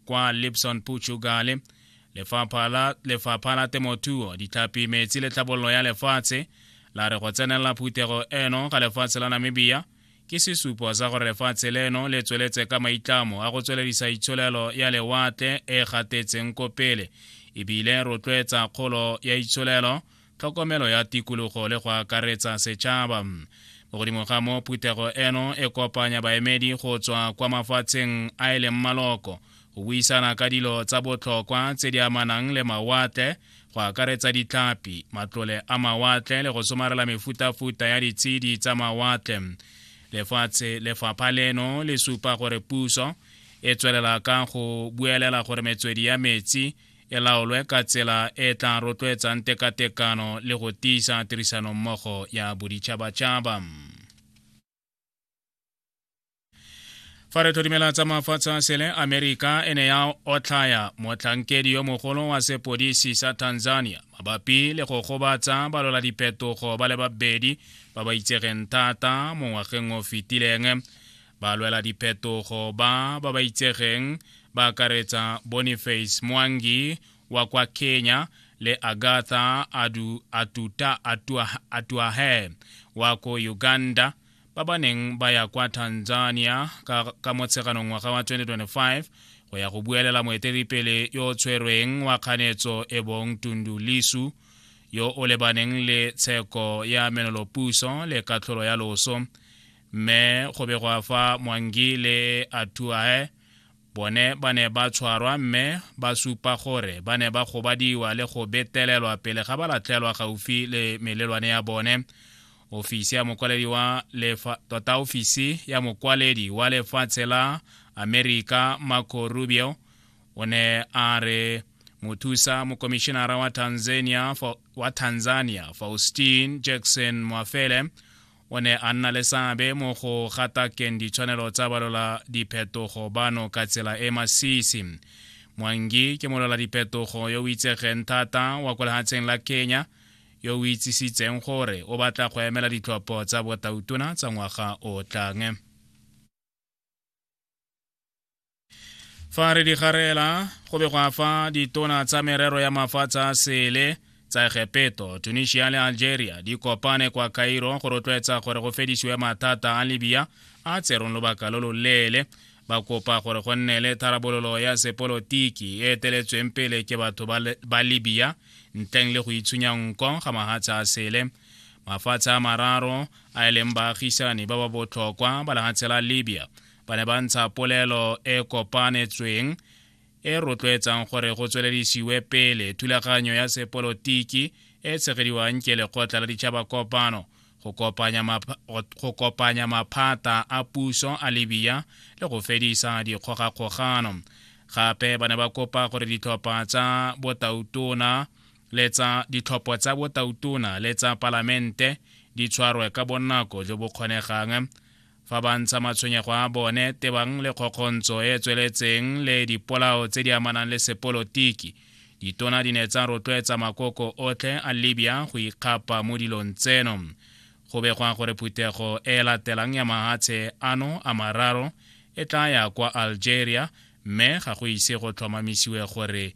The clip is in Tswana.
kwa lipson puchugale lefapha la, lefapha la temothuo ditlhapi metsi le tlhabololo ya lefatshe la re go tsenelela phuthego eno ga lefatshe la namibia ke sesupo sa gore lefatshe leno le tsweletse ka maitlamo a go tsweledisa itsholelo ya lewatle e gatetseng ko pele ebile rotloetsa kgolo ya itsholelo tlhokomelo ya tikologo le go akaretsa setšhaba mo godimo ga mo phuthego eno e kopanya baemedi go tswa kwa mafatsheng a e leng maloko go buisana ka dilo tsa botlhokwa tse di amanang le mawatle go akaretsa ditlhapi matlole a mawatle le go somarela mefutafuta ya ditshedi tsa mawatle lefatshe lefapha leno le supa gore puso e tswelela ka go buelela gore metswedi ya metsi e laolwe ka tsela e e tla rotloetsang tekatekano le go tiisa tirisanommogo ya boditšhabatšhaba fa re tlhodimela tsa mafatshe a sele amerika e ne ya otlhaya motlhankedi yo mogolo wa sepodisi sa tanzania mabapi le go gobatsa balola diphetogo ba le babedi ba ba itsegeng thata mo ngwageng o fetileng Ba lwela diphetogo ba ba ba itsegeng ba akaretsa Boniface Mwangi wa kwa Kenya le Agatha Adu Atuta Atuahe wa ko Uganda ba ba neng ba ya kwa Tanzania ka, ka motsheganong ngwaga wa 2025 go ya go buelela moeteledipele yo o tshwerweng wa kganetso e bong Tundu Lisu yo o lebaneng le tsheko ya menolopuso le katlholo ya loso mme go be gwa fa mwangi le atuae bone ba ne ba tshwarwa mme ba supa gore ba ne ba gobadiwa le go betelelwa pele ga ba latlhelwa gaufi le melelwane ya bone ofisi ya mokwaledi wa lefa tota ofisi ya mokwaledi wa lefatshe la amerika marco rubio o ne a re mothusa mokomishinara wa tanzania, wa tanzania faustin jackson mwafele o ne a nna le seabe mo go gatakeng ditshwanelo tsa balola diphetogo bano ka tsela e masisi mwangi ke molola diphetogo yo o itsegeng thata wa kwa lehatsheng la kenya yo o itsisitseng gore o batla go emela ditlhopho tsa botautona tsa ngwaga o tlang fa re di garela go be go a fa ditona tsa merero ya mafatshe a sele tsa egepeto tunisia le algeria di kopane kwa cairo go rotloetsa gore go fedisiwe mathata a libya a tserong lobaka lo loleele ba kopa gore go nne le tharabololo ya sepolotiki e eteletsweng pele ke batho ba libya ntleng le go itshunya nko ga mahatshe a sele mafatshe a mararo a e leng baagisani ba ba botlhokwa ba lehatshe la libya ba ne ba ntsha polelo e kopanetsweng e rotloetsang gore go tsweledisiwe pele thulaganyo ya sepolotiki e tshegediwang ke lekgotla la ditšhaba kopano go kopanya maphata a puso a libya le go fedisa dikgogakgogano gape ba ne ba kopa gore ditlhopha tsa botautona le tsa ditlhopho tsa botautona le tsa palamente di tshwarwe ka bonako jo bo kgonegang fa ba ntsha matshwenyego a bone tebang le kgokgontsho e e tsweletseng le dipolao tse di amanang le sepolotiki ditona di ne tsa rotloetsa makoko otlhe a libya go ikgapa mo dilong tseno go begwa gore phuthego e e latelang ya mahatshe ano a mararo e tla ya kwa algeria mme ga go ise go tlhomamisiwe gore